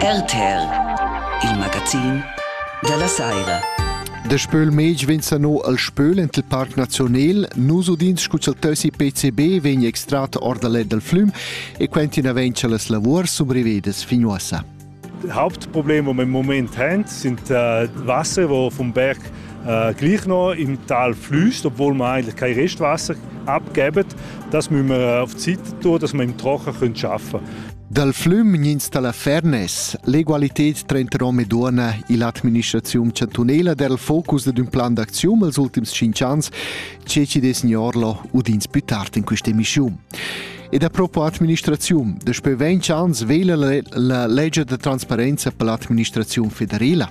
RTL, il magazin dalla saira. De Spöl Mej venza no al Spöl ent il Parc Nazional, nus udins scuzzoteusi PCB vegn extrat or dal dal flüm e quentina vencha las lavurs sumbrivedas fin uossa. Hauptproblem, wo wir im Moment haben, sind äh, Wasser, wo vom Berg gleichno im Tal flüßt, obwohl wir eigentlich kein Restwasser abgeben, das müssen wir auf die Seite tun, dass wir im Trocken arbeiten können. Dal flüm gnins dalla Fernes, l'egualited tranter hom e duonna ill'administraziun chantunela der il focus dad ün plan d'acziun els ultims 5 ans, che ci des gnorlo udins più tard in questa emissiun. Ed a propo administraziun, daspö 20 ans vela la legge da transparenza per l'administraziun federela.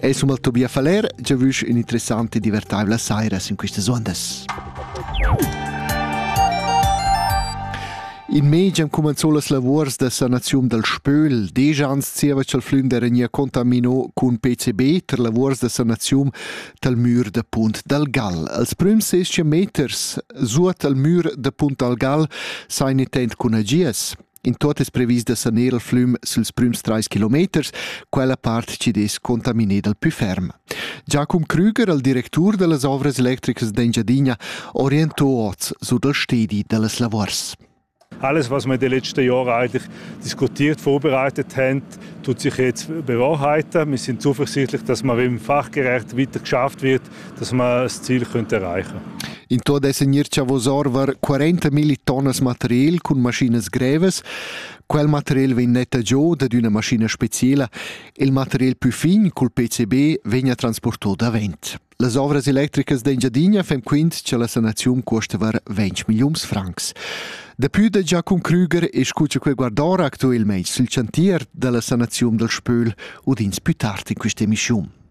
Ei summa Tobia Faller già vusch un'interessante e divertaivla saira sin questas ondas. In mez am cumanzò las lavurs da sanaziun dal Spöl. Deja ans zieva ch'el flünder nia contamino cun PCB per lavurs da sanaziun dal mür da Punt dal Gal. Als prüms 6 meters suot al mür da Punt dal Gal sain intent cun agias. In tuot es previs da saner il flüm süls prüms trais kilometers, quella part chi dess contaminé dal pü ferm. Giacum Krüger, il directur da las ovras electricas d'Engiadina, orientò oz sur dal stedi da las lavors. Alles, was wir die letzten Jahre eigentlich diskutiert, vorbereitet haben, tut sich jetzt bewahrheiten. Wir sind zuversichtlich, dass wir im fachgerecht weiter geschafft wird dass wir das Ziel erreichen können. In tot dessen ir chavos orvar 40 milli tonnas material cun maschinas grevas. Quel material vegn netta giò dad üna maschina speciela. Il material più fin cul PCB vegna transportò davent. Las ovras electricas d'Engiadina fem quint che la sanaziun cuostava 20 millions francs. Depui da Giacum Krüger escucha quel guardora actualmente sul chantier della sanazione del Spöl udins più tardi in questa emissione.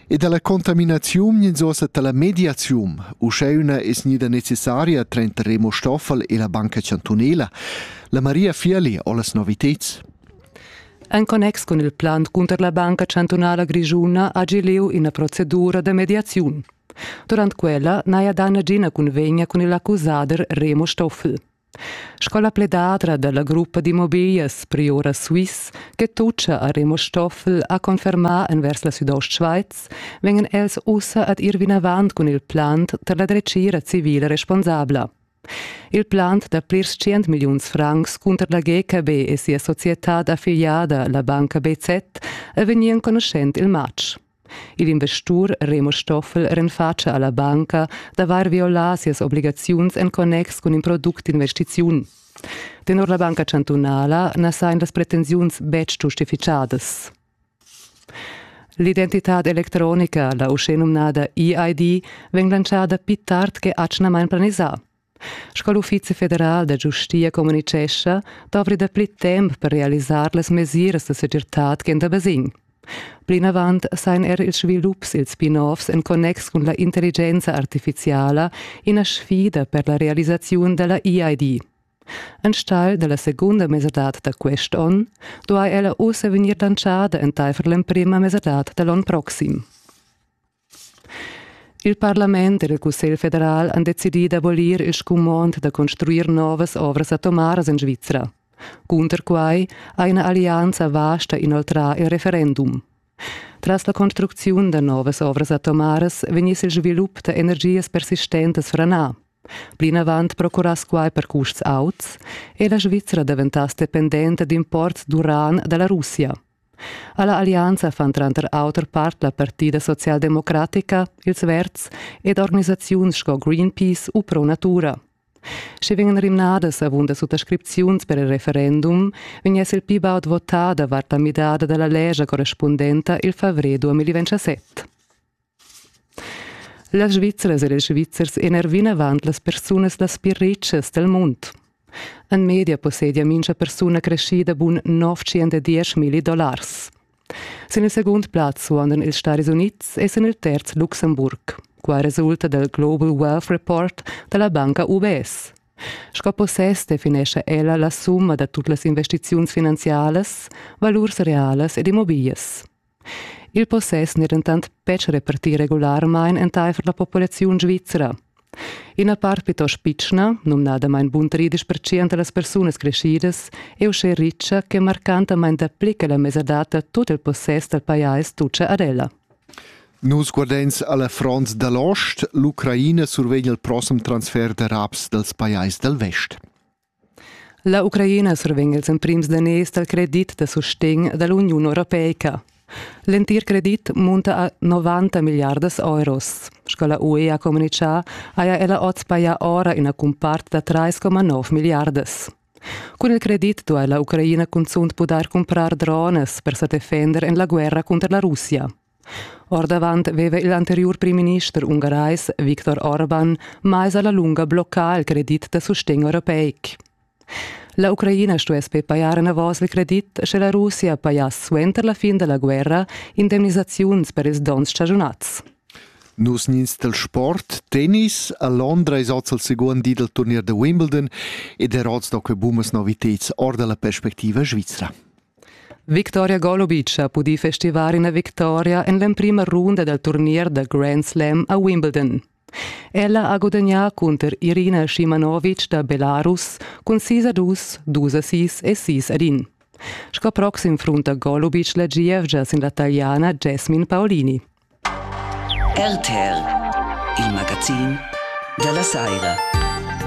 E dalla contaminaziun ins ussa dalla mediaziun. Uschè üna es gnida necessaria tranter Remo Stoffel e la Banca Chantunela. La Maria Fiali ho las noviteds. En connex cun il plan cunter la Banca Chantunala Grischuna ha lieu ina procedura da mediaziun. Durant quella n'haja dà nagina cunvegna cun il accusader Remo Stoffel. Sco la pledadra dalla gruppa d'immobilias Priora Swiss che tutscha a Remo Stoffel ha confermà envers la Südostschweiz, vegnan els ussa ad ir vinavant cun il plant per la dretgira civila responsabla. Il plant da plirs tschient milliuns francs cunter la GKB e sia societad affiliada, la banca BZ, è vegnì enconuschent il matg. Il investur Remo Stoffel renfatscha alla banca d'avair violà sias obligaziuns en connex cun in product d'investiziun. Tenor la banca chantunala na sajan las pretensiuns betg giustifichadas. L'identitad electronica, la uschè numnada EID, vegn lantschada pli tard che atgnamain planisà. Sco l'Uffizi federal da giustia communitgescha, dovri dapli temp per realisar las mesiras da segirtad ch'en da basegn. Plinavant sain er ils svilups, ils spin-offs en connex cun la intelligenza artificiala ina sfida per la realisaziun da la EID. Enstagl da la segunda mesadad da quest onn duai ella ussa vegnir lantschada entaifer l'emprima mesadad da l'onn proxim. Il parlament ed il Cussegl federal han decidì d'abolir il scumond da construir novas ovras atomaras en Svizra. Cunter quai ha ina allianza vasta inoltrà il referendum. Tras la construcziun da novas ovras atomaras vegniss il svilup da energias persistentas franà. Plinavant procurass quai per custs auts e la Svizra daventass dependenta d'imports d'uran da la Russia. Alla allianza fan tranter auter part la partida socialdemocratica, ils Verds ed organisaziuns sco Greenpeace u Pro Natura. Sche vegnan rimnadas avunda suttascripziuns per il referendum, vegn es il pi baud votà davart la midada dalla legia correspundenta il favrer 2017. Las Svizzras ed ils Svizzers enar vinavant las persunas las pli retschas dal mund. En media possedia mincha persuna creschida bun 910.000 dollars. Sin il segund plaz suondan ils Stadis Unids e sin il terz Luxemburg. Qua resulta dal Global Wealth Report da la banca UBS. Sco possess definescha ella la summa da tut las investiziuns finanzialas, valurs realas ed immobiglias. Il possess n'è dentant betg repartì regularmain entaifer la populaziun svizra. Ina part plitost pitschna, numnadamain buntaridisch pertschient a las persunas creschidas, è uschè ritscha che marcantamain dapli che la mesadad da tut il possess dal pajais tutgia ad ella. Nus guardains a la front da l'ost. L'Ucraina survegn il prossem transfer d'arabs dals pajais dal vest. La Ucraina survegn ils emprims daners dal credit da sustegn da l'Uniun europeica. L'entir credit munta a 90 milliardas euros. Sco la UE ha communitgà, haja ella oz pajà ora ina cumpart da 3,9 milliardas. Cun il credit duai la Ucraina cunzunt pudair cumprar drones per sa defender en la guerra cunter la Russia. Ordavant veva il anteriur primminister ungarais Viktor Orban mais alla lunga bloccà il credit da sustegn europeic. La Ucraina stuess be pajar enavos il credit, sche la Russia pajass suenter la fin della guerra indemnisaziuns per ils donns stagiunats. Nus nins del sport, tennis, a Londra es oz al second di del turnier da Wimbledon ed er oz da que bumas noviteds or dalla perspectiva svizra. Victoria Golubic ha pudì festivar ina victoria en l'emprima runda dal turnier da Grand Slam a Wimbledon. Ella ha gudagnà cunter Irina Shimanovic da Belarus cun sis a dus, dus a sis e sis ad in. Sco proxim frunta Golubic la gievgia sin la taliana Jasmine Paolini. RTR, il magazin da la saira.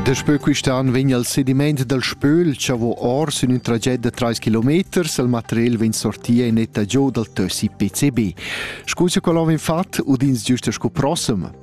Daspö quist'an vegn il sediment dal Spöl chavò or sün ün traget da trais kilometers, il material vegn sortia in etta giò dal tössi PCB. Scu cha quel ho vegn fat udins giusta scu prossem.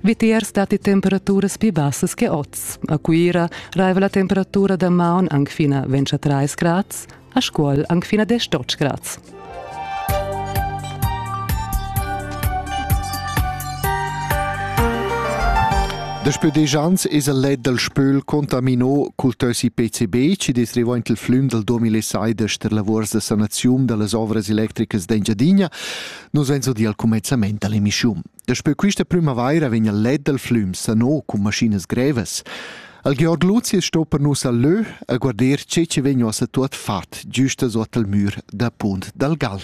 Vitiers datti temperaturas pli bassas che oz. A Cuira raiva la temperatura da maun anc fin a 23 grads, a Scuol anc fin a 18 grads. Daspö desch ans es el let dal spöl contamino cul tösi PCB chi dess revaint il flüm dal 2006 d'ester lavurs da sanaziun da las ovras electricas d'Engiadina. Nos vain so dir al cumezzamaint da l'emischiun. Daspö quista prümavaira vegna led dal flüm sano cun maschinas grevas. Al Georg Luzius sto per nus al lö a guarder che che vegna ossa tuot fat giusta sot al mür da Punt dal Gal.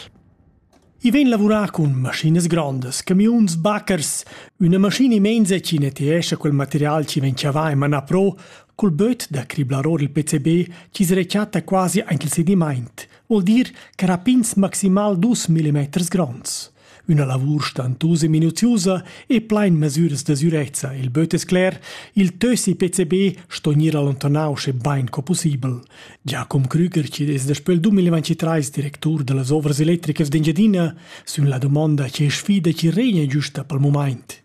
I vegn lavurà cun maschinas grandas, camiuns, baccers, üna maschina immensa chi neteescha quel material chi vegn chavà in mana pro, cul böt da criblar or il PCB chi s'rechatta quasi anche il sedimaint, vuol dir che rapins maximal 2 mm gronds. Üna lavur stantusa e minuziusa e plain mesüras da sürezza il böt es cler, il tössi PCB sto gnir allontanau sche bain co pussibel. Giacum Krüger, chi'd es daspö il 2023 directur da las ovras electricas d'Engiadina, sün la dumonda che sfida chi regna giüsta pel mumaint.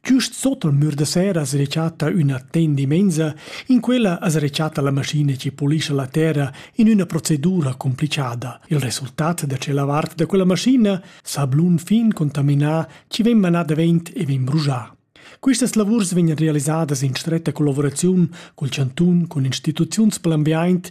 Giust sot al mür da sera as rechatta üna tendimensa, in quella as rechatta la maschina chi polischa la terra in üna procedura complichada. Il resultat da tschella vart da quella maschina sablun fin contaminà chi vegn manà davent e vegn brujà. Quistas lavurs vegnan realisadas in stretta collaboraziun cul chantun, cun instituziuns per l'ambiaint,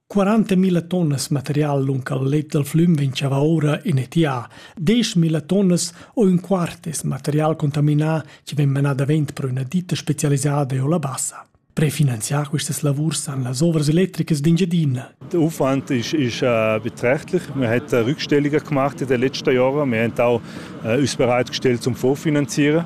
40.000 tonnas material lung al let dal flüm ventschava ora in etià, 10.000 tonnas o ün quart es material contaminà chi vegn menà davent per üna ditta specialisada o la bassa. Prefinanziar quistas lavurs san las ovras electricas d'Engiadina. Der Aufwand ist, ist äh, beträchtlich. Wir haben äh, Rückstellungen gemacht in den letzten Jahren. Wir haben auch äh, uns bereitgestellt zum Vorfinanzieren.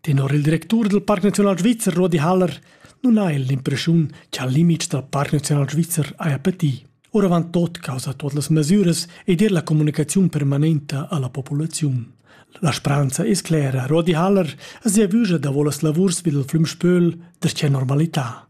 Tenor il directur dal Parc Naziunal Svizzer Rudi Haller nun ha el l'impressiun che al limit dal Parc Naziunal Svizzer haja patì. Oravant tot causa tot las mesiras ed er la comunicaziun permanenta alla populaziun. La spranza es clera. Rodi Haller es sia vügia davo las lavurs vid il flüm Spöl der normalità.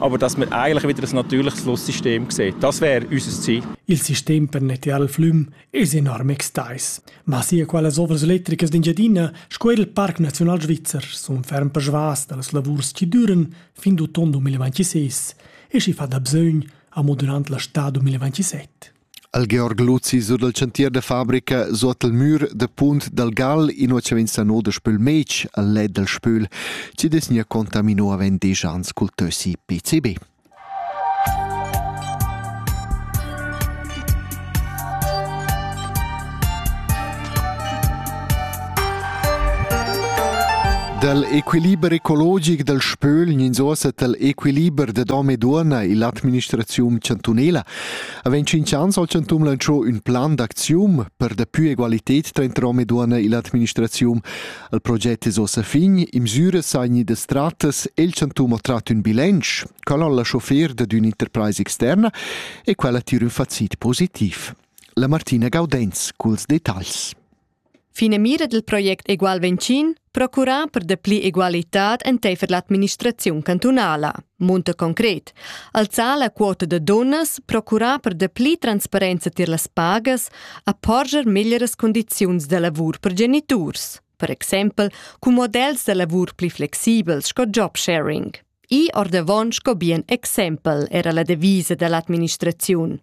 aber dass wir eigentlich wieder ein natürliches Lusssystem sehen. Das wäre unser Ziel. Il sistem per nettear il flum es enorm extais. Ma sia qualas ovras electricas d'Engiadina sco er il Parc Naziunal Svizzer sun ferm persvas da las lavurs chi düren fin d'uton 2026 e chi fa da bsögn amo durant la stà 2027. al Georg Luzi sur dal chantier da fabrica suot il mür da Punt dal Gal inua cha vegn sano da spül Meci al let dal spül chi desgna contamino avant desch ans cul tössi PCB. Dal equiliber ecologic dal Spöl gnins ossa tal equiliber da dom e duonna illa administraziun chantunela Avon tschintg ans ha il Chantun lantscho ün plan d'acziun per daplü egualited tranter hom e duonna illa administraziun. Il proget es ossa fin, imsüras saini da stratas e il Chantun ha trat ün bilanc, quel al lascho fer dad ün'interpraisa externa e quella tira ün facit positiv. La Martina Gaudenz culs detagls. Finamira dil project Egual Ventschin procurar per dapli egualitad enteifer l'administraziun cantunala. Munta concret. Alzar la quota da dunnas, procurar per dapli transparenza tier las pagas, a porger meglieras condiziuns da lavur per geniturs. Per exempel, cun models da lavur pli flexibels sco job sharing. I ordavon sco bien exempel era la devisa dall'administraziun.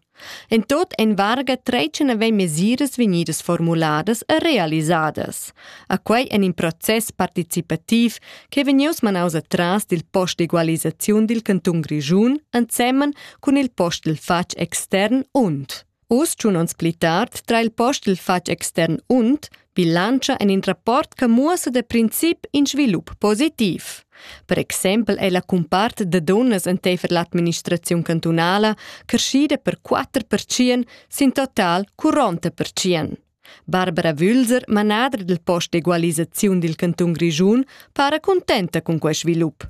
En tot en varga tretschen havein mesiras vegnidas formuladas e realisadas. A quei en in process participativ che vegnius manaus atras dil post d'egualisaziun dil cantun Grischun ensemen cun il post dil fatg extern und. Uss, tschun ons pli tard, tra il post il fatg extern und bilantscha en in rapport che muossa da princip in svilup positiv. Per exempel è la cumpart da dunnas enteifer l'administraziun cantunala creschida per 4% sin total curronta percient. Barbara Wülser, manader del post d'egualisaziun dil cantun Grischun, para contenta con quei svilup.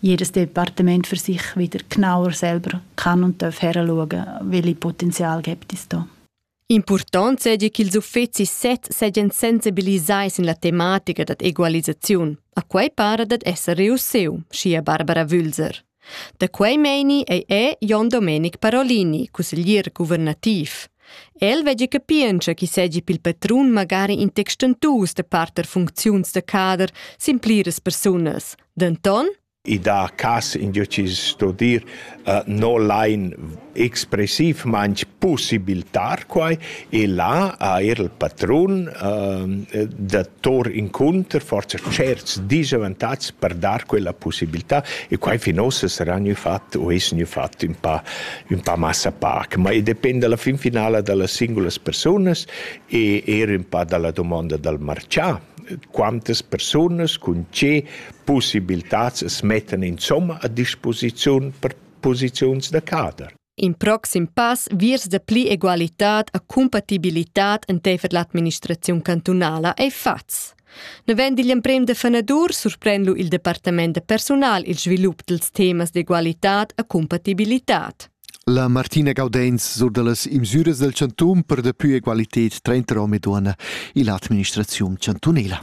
jedes Departement für sich wieder genauer selber kann und darf heranschauen, welche Potenzial gibt es da. Impurtant seigi ch'ils uffecis sezs seigien sensibilisai sin la tematica dad egualisaziun. A quei para dad esser reussiu, schia Barbara Wülser. Da quei meini ei è Jon Domenic Parolini, cusseglier guvernativ. El veggi capientscha chi segi pil patrun magari in textentus da parter funcziuns da cader sin pliras persunas, Denton? I dà cas in Dieu ci sto dir uh, no lain expressiv manch possibiltar quai e là ha er il patrun uh, da tor inconter forza certs disavantatgs per dar quella possibilità e quai fin ossa sarà gnü fatto o es gnü fatto un pa, un pa massa pac, ma e depende alla fin finala dallas singulas persunas e er un pa dalla domanda dal marcià quantas persunas cun tge pussibiltats as mettan insomma a disposiziun per posiziuns da cader. In proxim pass viers da pli egualitad e cumpatibilitad enteifer l'administraziun cantunala ei fatgs. Navend igl emprem da fanadur surpren lu il departament da persunal il svilup dils temas d'egualitad e cumpatibilitad. La Martina Gaudenz sur dallas imsüras del chantun per daplü egualited trainter hom e duonna illa administraziun chantunela.